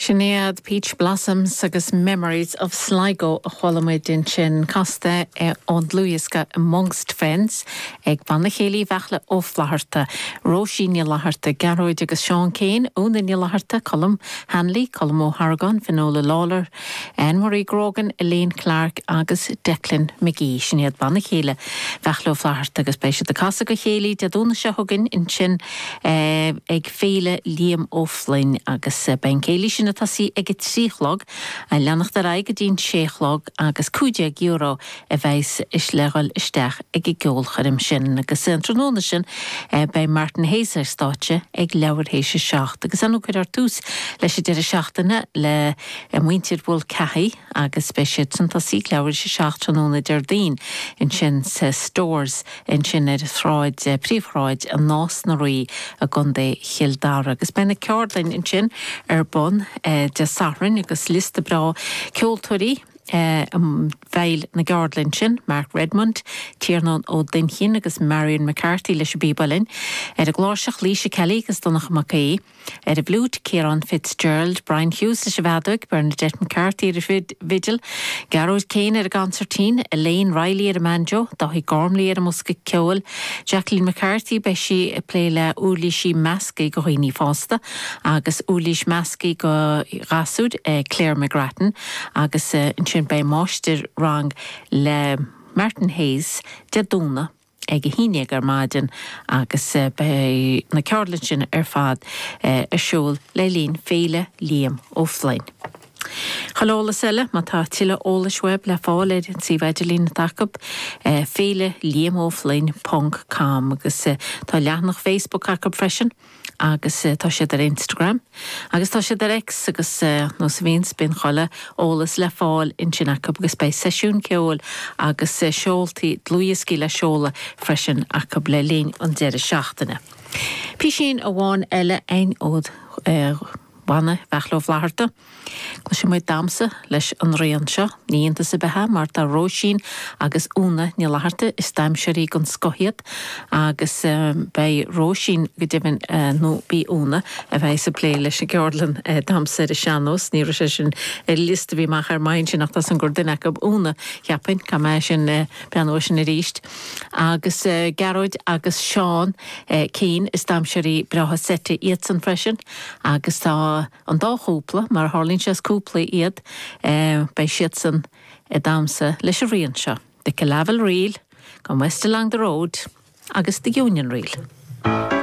Sin iad Peach Blossoms agus Memories of Sligo a chuala muid ansin, casta ón dlúthdhiosca Amongst Friends ag Banna Céilí Bheartla Ó Flatharta, Róisín Ní Fhlatharta, Gearóid agus Seán Keane, Úna Ní Fhlatharta, Colm Hanley, Colm Ó hArgáin, Fionnuala Lawlor, Anne-Marie Grogan, Elaine Clarke agus Declan McGee. Sin iad Banna Céilí Bheartla Ó Flatharta agus beidh siad ag casadh go chéilí Dé Domhnaigh seo chugainn ansin ag Féile Liam Ó Floinn agus beidh an céilí sin ag tosaí ag a trí a chlog, a leanacht ar aghaidh go dtí'n sé a chlog agus €15 a bheidh sé le ghoil isteach ag an gceolchoirm sin agus an tráthnóna sin beidh Martin Hayes ar stáitse ag leathuair théis a seacht agus ann a cuirfear tús leis an deireadh seachtaine le muintir Mhulcahy agus beidh siadsan ag tosaí ag leathuair théis a seacht tráthnóna Déardaoin ansin sa Stores ansin ar shráid príomhshráid an Nás na Rí i gContae Chill Dara agus beidh na ceardlainn ansin ar bun Dé Sathairn agus liosta breá ceoltóirí i bhfeighil na gceardlann sin, Mark Redmond, Tiarnán Ó Duinnchinn agus Marion McCarthy leis an bpíb uilleann, ar an gcláirseach Laoise Kelly agus Donncha Mac Aoidh, ar an bhfliúit Ciarán Fitzgerald, Brian Hughes leis an bhfeadóig, Bernadette McCarthy ar an bhfidil, Gearóid Keane ar an gconsairtín, Elaine Reilly ar an mbanjo, Dáithí Gormley ar an mbosca ceoil, Jacqueline McCarthy, beidh sí ag plé le uirlisí measctha go dhaoine fásta, agus uirlisí measctha go ghasúir, Claire McGrattan, Agus ansin beidh máistir rang le Martin Hayes Dé Domhnaigh ag a haon déag ar maidin agus beidh na ceardlainn sin ar fad ar siúl le linn Féile Liam Ó Floinn. Chuile eolas eile, má tá tuilleadh eolais uaibh le fáil ar an suíomh idirlín atá acu, féileliamofloinn ponc com, agus tá leathnach Facebook acu freisin. agus tá siad ar Instagram agus tá siad ar X agus nós a bhíonns, bíonn chuile eolas le fáil ansin acu agus beidh seisiún ceoil agus seoltaí dlúthdhioscaí le seoladh freisin acu le linn an deireadh seachtaine. Písín amháin eile againn ó. Bhanna Bheartla Ó Flaithearta. Cloisfidh muid damhsa leis an rian seo. Ní iontas ar bith é mar tá Róisín agus Úna Ní Fhlaithearta, is daimseoirí den scoth iad agus beidh Róisín go deimhin nó ab í Úna a bheas ag plé leis an gceardlann damhsa ar an sean-nós. Ní raibh sé sin ar an liosta a bhí amach ar m'aghaidh ansin ach tá a fhios agam gur duine acu, Úna, cheapfainn, caithfidh mé breathnú air sin arís. Agus Gearóid agus Seán Keane, is daimseoirí breátha seite iadsan freisin. Agus tá an dá chúpla, mar a tharlaíonn sé is cúplaí iad, beidh siadsan ag damhsa leis an rian seo, The Killavil Reel, Come West Along the Road agus The Union Reel.